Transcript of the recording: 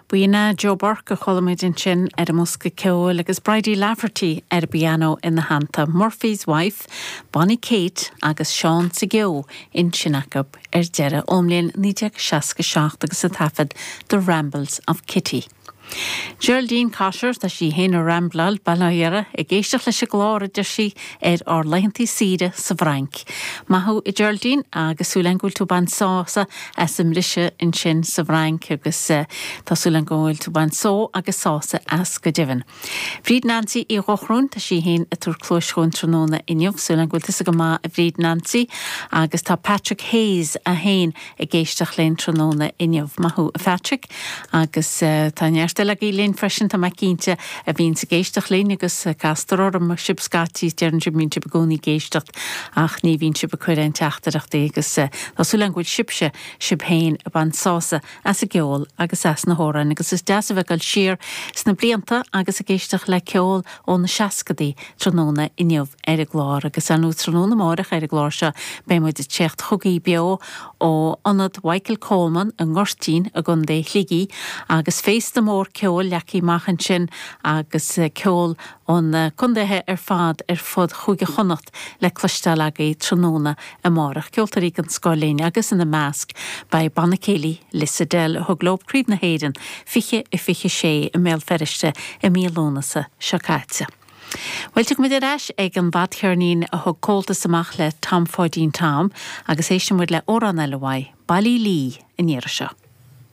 B'in é Joe Burke a chuala muid ansin ar an mbosca ceoil agus Bridie Lafferty ar an bpianó ina theannta, Murphy's Wife, Bonnie Kate agus Seán sa gCeo ansin acu ar deireadh ón mbliain 1967 agus an taifead The Rambles of Kitty. Geraldine Cotter, tá sí féin i Rambleal, bail ó Dhia uirthi, ag éisteacht leis an gclár, a deir sí, ar ár laethantaí saoire sa bhFrainc. Maith thú, a Geraldine, agus súil agam go bhfuil tú ag baint sásamh as an mbriseadh ansin sa bhFrainc, agus tá súil agam go bhfuil tú ag baint só agus sásaimh as go deimhin. Bríd Nancy Uí Dhochróin, tá sí féin ag tabhairt cluais dhúinn tráthnóna inniu. Súil agam go bhfuil tusa go maith a Bhríd Nancy agus tá Patrick Hayes é féin ag éisteacht linn tráthnóna inniu. Maith thú a Phatrick agus tá neart eile agaibh linn freisin tá mé cinnte a bhíonns ag éisteacht linn agus castar orm sibh scaití is deireann sibh go mbíonn sibh i gcónaí ag éisteacht ach ní bhíonn sibh ag cuir aon teachtaireachtaí agus tá súil agam go bhfuil sibhse sibh féin ag baint sásamh as an gceol agus as na hamhráin agus is deas a bheith ag dul siar sna blianta agus ag éisteacht le ceol ó na seascadaí. Tráthnóna inniu ar an gclár agus ar ndóigh tráthnóna amárach ar an gclár seo beidh muid ag téacht chugaí beo ó Ionad Mhichael Coleman i nGoirtín i gContae Shligigh agus féasta mór ceoil leagtha amach ansin agus ceol ó na condaetha ar fad ar fud Chúige Chonnacht le cloisteáil agaí tráthnóna amárach, ceoltóirí den scoth linn agus ina measc beidh Banna Céilí Lissadell a thug leo Craobh na hÉireann 20 i 26 i mBéal Feirste i mí Lúnasa seo caite. Bhuel, tiocfaidh muid ar ais ag an bhfadcheirnín a thug Comhaltas amach le Tom Pháidín Tom agus éisteann muid le amhrán eile uaidh, Baile Uí Lí, an iarraidh seo.